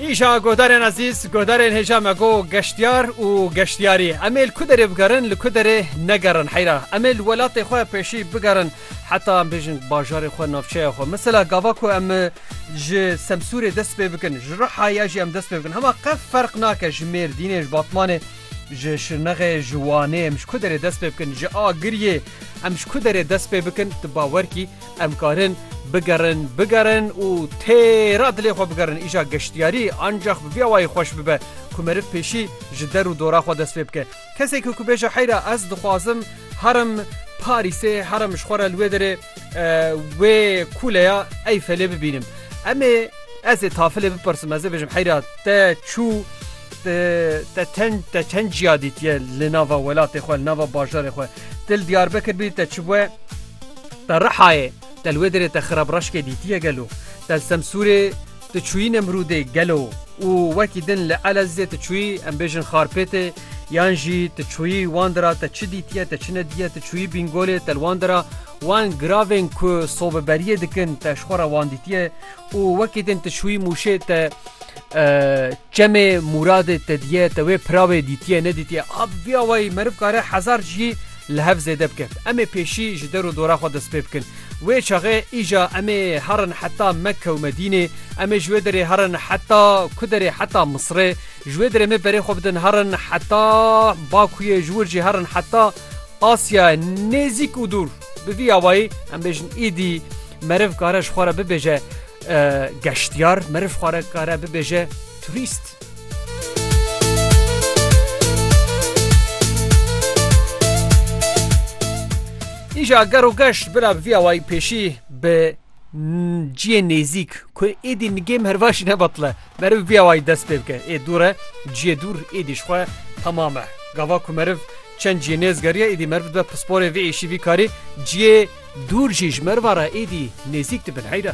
Îşa guhdarên ezîz, guhdarên hêja me go geştyar û geştyarî. Em ê li ku derê bigerin, li ku derê negerin heyra. Em ê li welatê xwe pêşî bigerin heta em bêjin bajarê xwe navçeya xwe. Mesela gava ku em ji Semsûrê dest pê bikin, ji Riha ya jî em dest pê bikin hema qet ferq nake ji Mêrdînê, ji Batmanê, ji Şirnexê, ji Wanê em ji ku derê dest pê bikin, ji Agiriyê em ji ku derê dest pê bikin tu bawer kî, Em karin bigerin, bigerin û têra dilê xwe bigerin. Îja geştyarî ancax bi vî awayî xweş bibe ku meriv pêşî ji der û dora xwe dest pê bike. Kesekî ku bêje heyra ez dixwazim herim Parîsê, herim ji xwe re li wê derê wê kuleya Eyfelê bibînim. Em ê ez ê tafilê bipirsim, ez ê bêjim heyra te çû te çend ciya dîtiye li nava welatê xwe, li nava bajarê xwe. Ti li Diyarbekir bî te çi bûye? Te Rihayê, Telwêdirê te Xirabraşkê dîtiye gelo? Tel Semsûrê tu çûyî Nemrûdê gelo û wekî din li Elezizê tu çûyî em bêjin Xarpêtê yan jî tu çûyî wan dira te çi dîtiye te çi nedîye tu çûyî Bîngolê tel wan dira wan giravên ku sobeberiyê dikin te ji xwe re wan dîtiye û wekî din tu çûyî Mûşê te çemê Mûradê te diye te wê piravê dîtiye nedîtiye a bi vîya wayî meriv kare hezar cî li hev zêde bike. Em ê pêşî ji der û dora xwe dest pê bikin. Wê çaxê îja em ê herin heta Mekke û Medînê, em ê ji wê derê herin heta ku derê heta Misirê, ji wê derê me berê xwe bidin herin heta Bakuyê, ji wir jî herin heta Asyayê nêzîk û dûr. Bi vî awayî em bêjin îdî meriv kare ji xwe re bibêje geştyar, meriv xwe re kare bibêje turîst. Îja ger û geş bila bi vî awayî pêşî bi ciyê nêzîk ku êdî nigêm hervaşî nebatile meriv bi vî awayî dest pê bike ê dûr e ciyê dûr êdî ji xwe temam e gava ku meriv çend ciyê nêz geriye êdî meriv dibe pisporê vê êşî vî karî ciyê dûr jî ji meriva re êdî nêzîk dibin heyre.